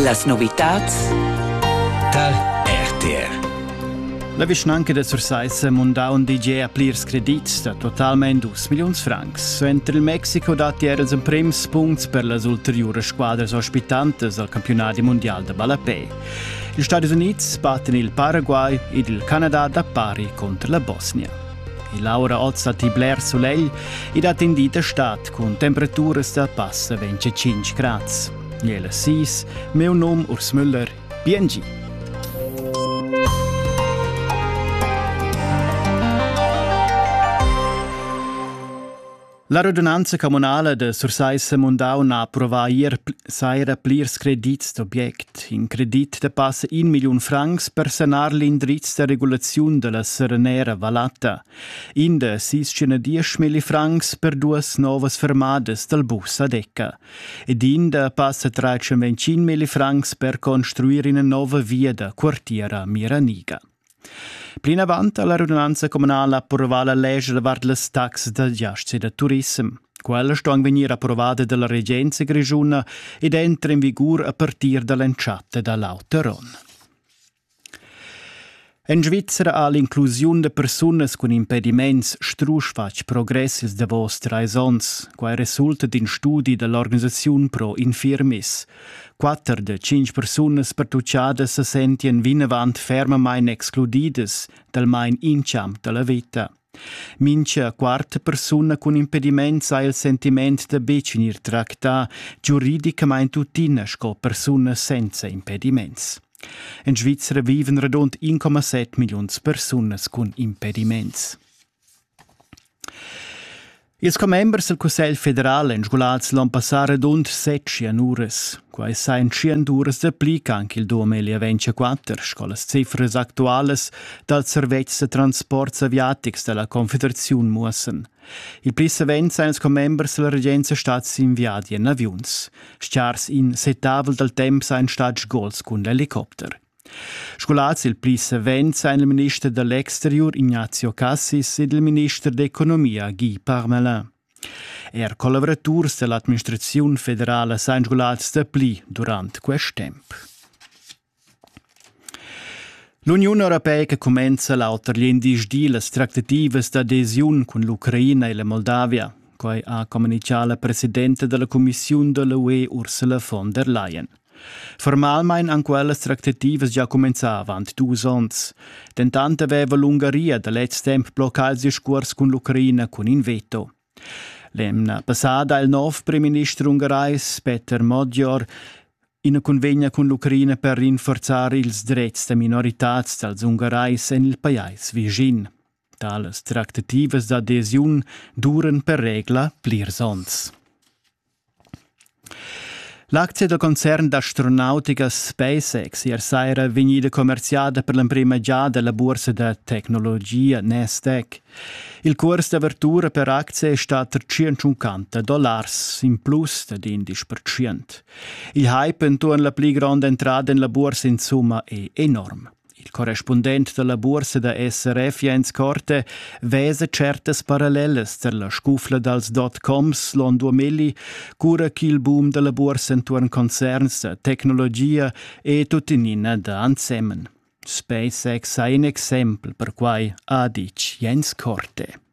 Las novitads tar RTR. La vischnanca da Sursaissa mundà un DJ a plirs credits da totalmain 2 milliuns francs. Suenter il Mexico datti er els emprims punts per las ulteriuras squadras ospitantas al campiunat mundial da ballapè. Ils Stati Unids battan il Paraguay ed il Canada da pari contro la Bosnia. E l'aura ozza ti bler sulegl ed ha tendì d'estat cun temperaturas da passa 25 grads. Jela sis, meu nom Urs Müller, biengi! La radunanza communala de Sursaissa Mundau n'ha approvà ier saira plirs credits d'object. In credit de passa in milliun francs per sanar l'indriz de regulaziun della serenera Valatta, in de sis diesch milli francs per duas novas fermadas dal bus a Decca ed in de passa trecento milli francs per construir ina nova via da quartiera Miraniga. Plinavant ha la radunanza communala approvà la lescha davart las taxas da giasts e da turissem. Quella sto anc vegnir approvada dalla regenza grischuna ed entra in vigur a partir dall'entschatta da l'auter onn. En Svizzera ha l'inclusiun da persunas cun impediments strusch fatg progress ils davos trais onns. Quai resulta d'in studi da l'organisaziun Pro Infirmis. Quatter da tschintg persunas pertuchadas se sentien vinavant fermamain excludidas dal main inchamp da la vita. Mincha quarta persuna cun impediments ha il sentiment da betg gnir tractà giuridicamain tuttina sco persuna senza impediments. In Svizzera vivan radund 1,7 milliuns persunas cun impediments. Ils commembers dal Cussegl federal èn sgulats l'onn passà radund set tschienurers. Quai sajan tschient uras da pli ch'anc il 2024, sco las cifras actualas dals servetschs da transports aviatics da la Confederaziun muossan. Il pli savens èn ils commembers da la regenza stads in viadi en aviuns. Stgars in settavel dal temp sajan stads gols cun l'helicopter. Scolars il pli savens ein il minister da l'exteriur Ignazio Cassis ed il minister d'economia Guy Parmelin. Er collaboraturs dall'administraziun federala san scolars dapli durant quest temp. L'Uniun europeica cumenza l'auter glindisdi las trattativas d'adesiun cun l'Ucraina e la Moldavia. Quai ha communichà la presidenta della Commissiun da l'UE Ursula von der Leyen. Formalmein han quellas tractativas gia cumenzà avant dus onns. Dentant aveva l'Ungaria da lez temp bloccà il scuors cun l'Ucraina cun in veto. L'emna passada ha il nov primminister ungarais Peter Modjor ina cunvegna cun l'Ucraina per rinforzar ils drets da minoritads dals ungarais en il pajais vischin. Talas tractativas d'adesiun duran per regla plirs onns. L'aczia da concern d'astronautica SpaceX ier saira vegnida commerziada per l'emprima giada la bursa da tecnologia Nasdaq. Il curs d'avertura per aczie è stat tar 150 dollars, in plus dad 11 percent. Il hype enturn la pli gronda entrada en la bursa insumma è enorm. Il correspundent dalla buorsa da SRF Jens Korte vesa certas parallelas tar la scufla dals dot-coms l'on 2000, cura ch'il boom dalla buorsa entuorn concerns, tecnologia e tuttenina da ensemen. SpaceX ha in exempel per quai, ha ditg Jens Korte.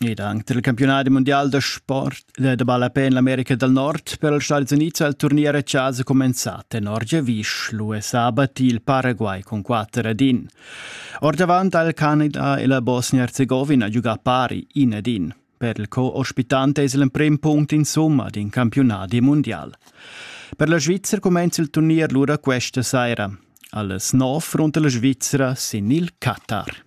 Ed anc dal campiunadi mundial da sport da ballapè en l'America dal Nord per els Stadis Unids ha il turnier a chasa cumenzà tenor giavisch. L'US ha battì il Paraguay cun quatter ad in. Ordavant ha il Canada e la Bosnia-Herzegovina giugà pari in ad in. Per il co-ospitante es l'emprim punct insumma d'in campiunadi mundial. Per la Svizzera cumenza il turnier lura questa saira. Alles nov runter la Svizzera sin il Qatar.